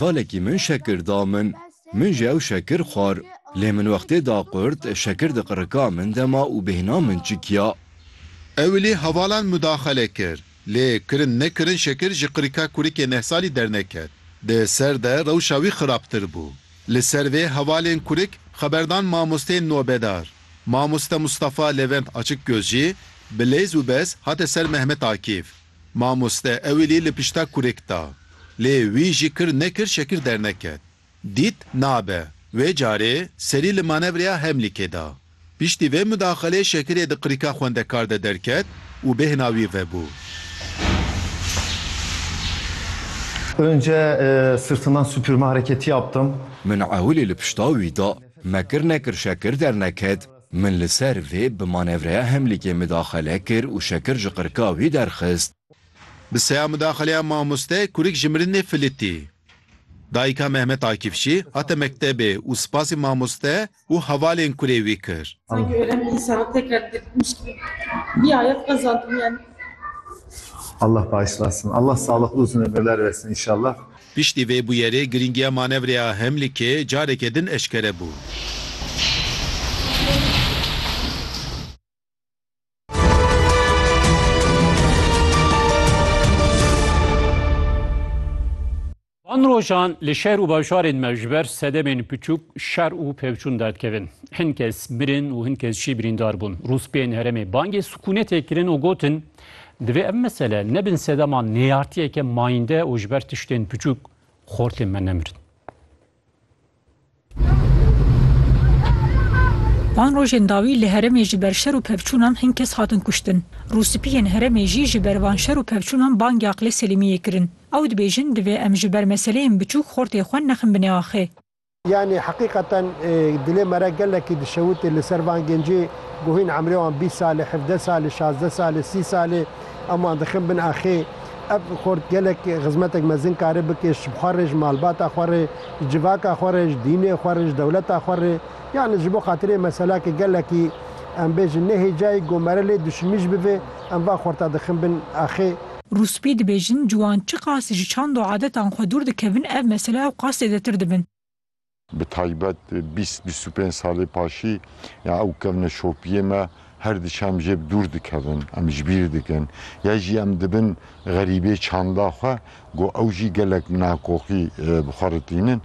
Qalekî min şekir da min. Min jî ew şekir xwar. Lê min wextê da qurt, şekir di qirika min de ma û bêhna min çikiya. Ew li hevalan mudaxele kir. Lê kirin nekirin şekir ji qirika kurikê neh salî derneket. Di ser de rewşa wî xirabtir bû. Li ser vê hevalên kurik xeber dan mamosteyên nobedar. Mamoste Mustafa Levent Açikgöz jî bi lêz û bez hate ser Mehmet Akîf. Mamoste ewilî li pişta kurik da. Lê wî jî kir nekir şekir derneket. Dît nabe. Wê carê serî li manevreya Hemlîkê da. Piştî vê mudaxelê şekirê di qirika xwendekar de derket û bêhna wî vebû. Önce sırtından süpürme hareketi yaptım. Min ewilî li pişta wî da. Me kir nekir şekir derneket. Min li ser vê bi manevreya hemlîkê midaxele kir û şekir ji qirka wî derxist. Bi seya midaxeleya mamoste kurik ji mirinê filîtî. Dayika Mehmet Akif jî hate mektebê û spasî mamoste û hevalên kurê wî kir. Piştî vê bûyerê girîngiya manevreya Hemlikê careke din eşkere bû. Van rojan li şer û bajarên me ji ber sedemên piçûk şer û pevçûn derkevin. Hin kes mirin û hin kes jî birîndar bûn. Rûspiyên herêmê bangê sikûnetê kirin û gotin, Divê ev mesele nebin sedema nêyartiyeke mayînde û ji ber tiştên biçûk xortên me nemirin. Van rojên dawî li herêmê ji ber şer û pevçûnan hin kes hatin kuştin. Rûspiyên herêmê jî ji ber van şer û pevçûnan bang ya Qilê Selîmiyê kirin. Ew dibêjin divê em ji ber meseleyên biçûk xortê xwe nexin binê axê. Yanî heqîqeten dilê me re gelekî dişewitî li ser van gencê ku hîn emrê wan bîst sal e, hevdeh sal e, şazdeh sal e, sî sal e em wan dixin bin axê. Ev xort gelek xizmetek mezin kare bike ji xwe re, ji malbata xwe re, ji civaka xwe re, ji dînê xwe re, ji dewleta xwe re. Yanî ji bo xatirê mesela ke gelekî em bêjin nehêcayî ku me re lê duşimî jî bibe em van xorta dixin bin axê. Rûspî dibêjin, ciwan çiqas ji çand û adetan xwe dûr dikevin ev mesele ew qas zêdetir dibin. Bi taybet bîst bîst û pênc salê paşî ya ew kevne şopiyê me her diçe em jê bi dûr dikevin, em ji bîr dikin. Ya jî em dibin xerîbê çanda xwe ku ew jî gelek nakoxî bi xwe re tînin.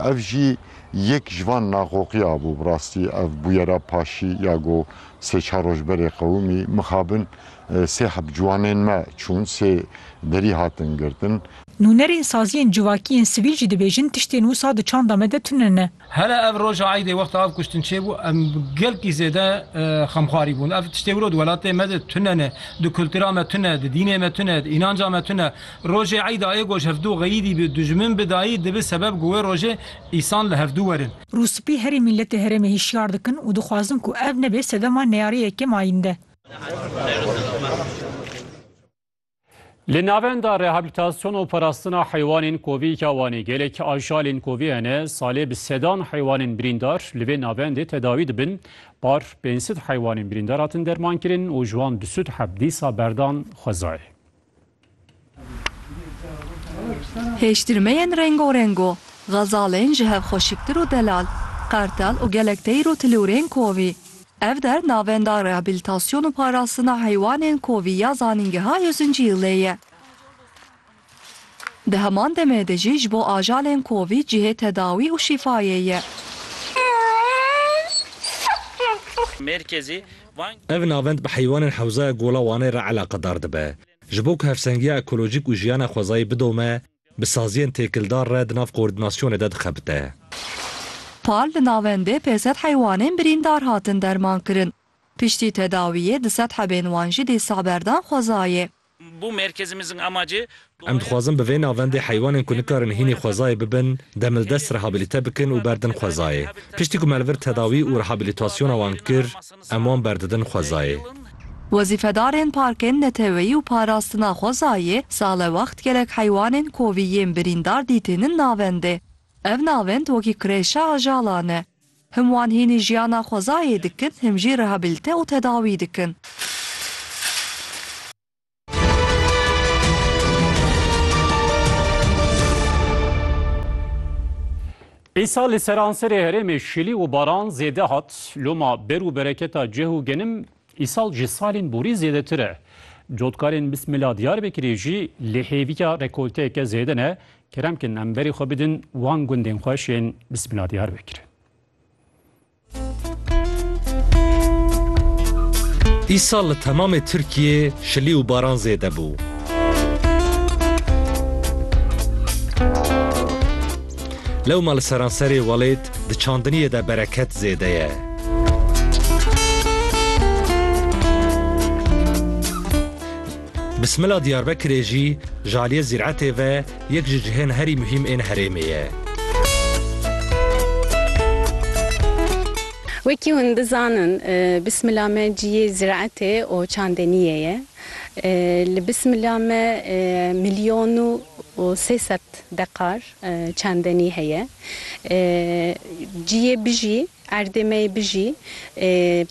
Ev jî yek ji van nakoxiya bû. Bi rastî ev bûyera paşî ya ku sê çar roj berê qewimî mixabin Sê heb ciwanên me çûn, sê derî hatin girtin. Nûnerên saziyên civakî yên sivîl jî dibêjin tiştên wisa di çanda me de tune ne. Hele ev roja eydê wexta ev kuştin çêbû em gelkî zêde xemxwarî bûn. Ev tiştê wilo di welatê me de tune ne, di kultura me tune, di dînê me tune, di înanca me tune. Rojê eyda ê goj hevdu xeyîdî bi dijmin bi dayî dibi sebeb ku wê rojê îsan li hevdu werin. Rûspî herî mîletê herêmê hişyar dikin û dixwazin ku ev nebe sedema neyariyê yekem ayînde. Li navenda rehabilitasyon û parastina heywanên kovî ya Wanê gelek ajalên kovî hene, salê bi sedan heywanên birîndar li vê navendê tedawî dibin. Par pênc sed heywanên birîndar hatin dermankirin û ji wan du sed heb dîsa berdan xwezayê. Hêştirmeyên rengorengo, xezalên ji hev xwe şiktir û delal, qertel û gelek teyr û tilûrên kovî. Ev der navenda rehabilitasyon û parastina heywanên kovî ya Zanîngeha Yuzinciyilê ye. Di heman demê de jî ji bo ajalên kovî cihê tedawî û şîfayê ye. Mêrkezî Ev navend bi heywanên Hewzaya Gola Wanê re eleqedar dibe. Ji bo ku hevsengiya ekolojîk û jiyana xwezayî bidome, bi saziyên têkildar re di nav koordînasyonê de dixebite. Pal li navendê pê sed heywanên birîndar hatin dermankirin. Piştî tedawiyê di sed hebên wan jî dîsa berdan xwezayê. Bo merkezimizin amacê Em duaya dixwazin bi vê navendê heywanên ku nikarin hînî xwezayê bibin demildest rehabilite bikin û berdin xwezayê. Piştî ku melvir tedawî û rehabilitasyona wan kir, em wan berdidin xwezayê. Wezîfedarên Parkên Neteweyî û Parastina Xwezayê sale wext gelek heywanên kovî yên birîndar dîtînin navendê. Ev navend wekî kireşa ajala ne. Him wan hînî jiyana xwezayê dikin, him jî rehabilite û tedawî dikin. Îsal li seranserê herêmê şilî û baran zêde hat, loma ber û bereketa cih û genim Îsal ji salên borî zêdetir e. Cotkarên Bismila Diyarbekirê jî li hêviya rekolteyeke zêde ne, kerem kin em berê xwe bidin wan gundên xweş ên Bismila Diyarbekirê. Îsal li temamê Tirkiyê şilî û baran zêde bû. Lewma li seranserê welêt Di çandiniyê de bereket zêde ye. Bismila Diyarbekirê jî ji aliyê zîretê ve yek ji cihên herî muhîm ên herêmê ye. Wekî hûn dizanin bismila me ciyê zîretê û çandiniyê ye. Li bismila me milyon û sê sed dekar Çandenî heye. Ciyê bijî, erdê me yê bijî,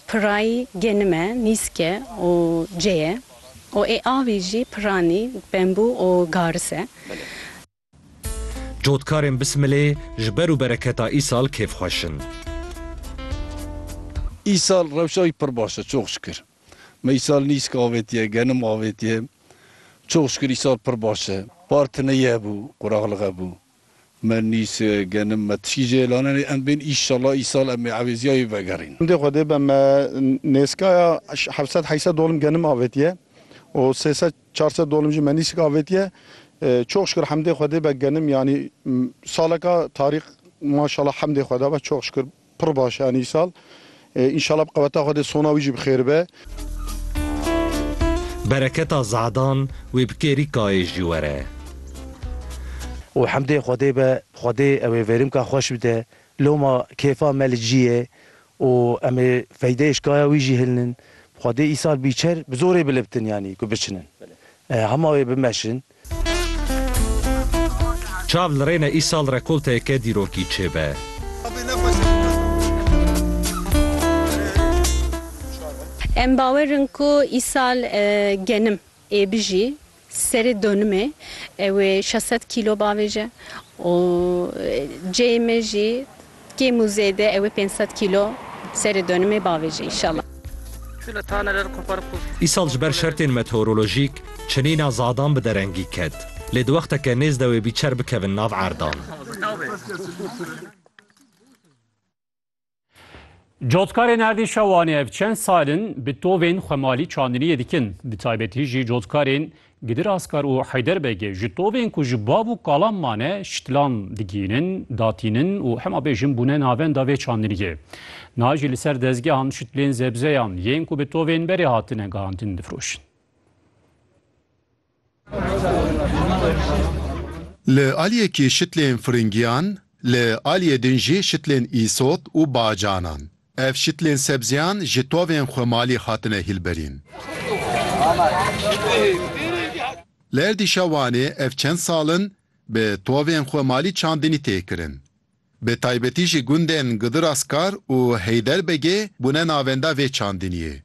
piray genime, nîske û ceye û ê avî jî piranî, bembû û garis e. Cotkarên Bismilê ji ber û bereketa îsal kêfxweş in. Îsal rewşa wî pir baş e, çok şikir. Me îsal nîsk avêtiye, genim avêtiye. Çox şikir îsal pir baş e. Par tineye bû, quraxlixe bû. Me nîsk, genim, me tişkî jê lanenê. Em bên îşallah îsal em ê ewêziyayê vegerîn. Hindê xwedê be me nêskaya heft sed heşt sed dolim genim avêtiye û sê sed çar sed dolim jî me nîsk avêtiye. Çox şikir hemdê xwedê be genim yanî saleka tarîx maşallah hemdê xweda be çox şikir. Pir baş e Enîsal. Înşala bi qeweta Xwedê sona wî jî bi xêr be. Bereketa Ze'dan wê bi kêrî kayê jî were. Û hemdê Xwedê be. Xwedê ew ê vêrîmka xweş bide. Loma kêfa me li cî yê û em ê feydeyê şkaya wî jî hilnin. Xwedê îsal bîçer bi zorê bilibtin yanî ku biçinin. Hema wê bimeşin. Çav li rêne îsal rekolteyeke dîrokî çêbe. Em bawer in ku îsal genim ê bijî serê donimê ew ê şeş sed kîlo bavêje û ceyê me jî Kêm û zêde ew ê pênc sed kîlo serê donimê bavêje înşallah. Îsal ji ber şertên meteorolojîk çinîna zadan bi derengî ket, lê di wexteke nêz de wê bîçer bikevin nav erdan. Cotkarên erdîşa Wanê ev çend sal in bi tovên xwemalî çandiniyê dikin, bi taybetî jî cotkarên Gidir Askar û Heyder Begê ji tovên ku ji bav û kalan mane şitilan digihînin, datînin û hema bêjin bûne navenda vê çandiniyê. Niha jî li ser dezgehan şitlên zebzeyan yên ku bi tovên berê hatine gihandin difiroşin. Li aliyekî şitlên firingiyan, li aliyê din jî şitlên îsot û bacanan. Ev şitlên sebzeyan ji tovên xwe malî hatine hîlberîn. Li erdîşa Wanê ev çend sal in bi tovên xwe malî çandinî tê kirin. Bi taybetî jî gundên Gidir Askar û Heyderbegê bûne navenda vê çandiniyê.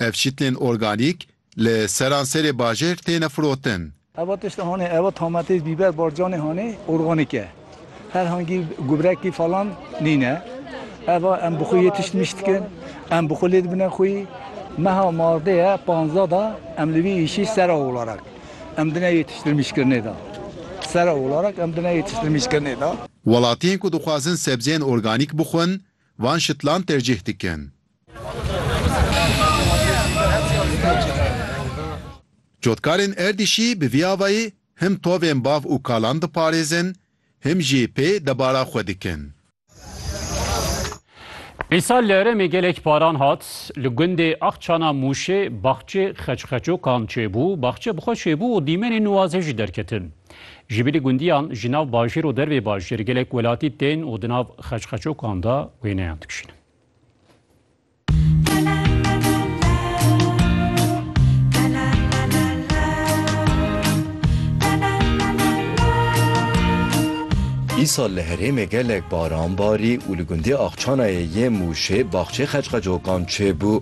Ev şitlên organîk li seranserê bajêr têne firotin. Eva tişt hanê, eva tametê, bîber, barcanê hanê organîk e. Her hangî gubrekî falan nîne. Eva em bi xwe yê tişt miş dikin, em bi xwe lê dibine xwî. Meha mardê ye panzdeh da em li vî îşî sera olarak em dine yê tiştirmîşkirinê da. Sera olarak em dine yê tiştirmîşkirinê da. Welatiyên ku dixwazin sebzeyên organîk bixwin, van şitlan tercîh dikin. Cotkarên Erdîşî bi vî avayî him tovên bav û kalan diparêzin him jî pê debara xwe dikin. Îsal li herêmê gelek paran hat, li gundê Axçana Mûşê baxçê xeçxeçokan çêbû, baxçe bi xwe çêbû û dîmenên nuwazê jî derketin. Ji bilî gundiyan ji nav bajêr û dervê bajêr gelek welatî tên û di nav xeçxeçokan de wêneyan dikişînin. Îsal li herêmê gelek baran barî û li gundê Axçanayê yê Mûşê baxçê qeçqecokan çêbû.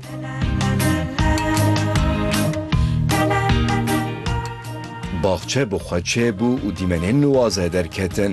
Baxçe bi xwe çêbû û dîmenên nuwaze derketin.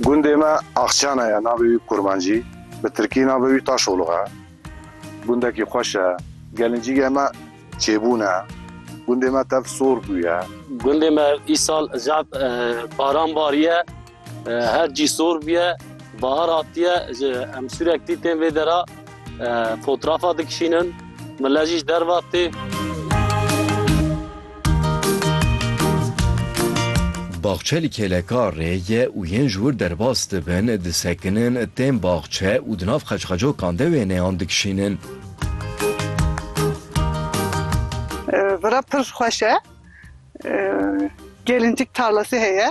Gundê me Axçana ye, navê wî Kurmancî, bi tirkî navê wî Taşolux e. Gundekî xweş e. Gelincîgê me çêbûn e. Gundê me tev sor bûye. Gundê me îsal zaf baran bariye. Her cî sor bûye. Bahar hatiye, ji em sûrektî tên vê dera. Fotrafa dikişînin, millet jî ji derve tê. Baxçe li kêlekarê ye û yên ji wir derbas dibin, disekinin, tên baxçe û di nav qeçqecokan de wêneyan dikişînin. Vira pir xweş e. Gelîncik tarlasî heye.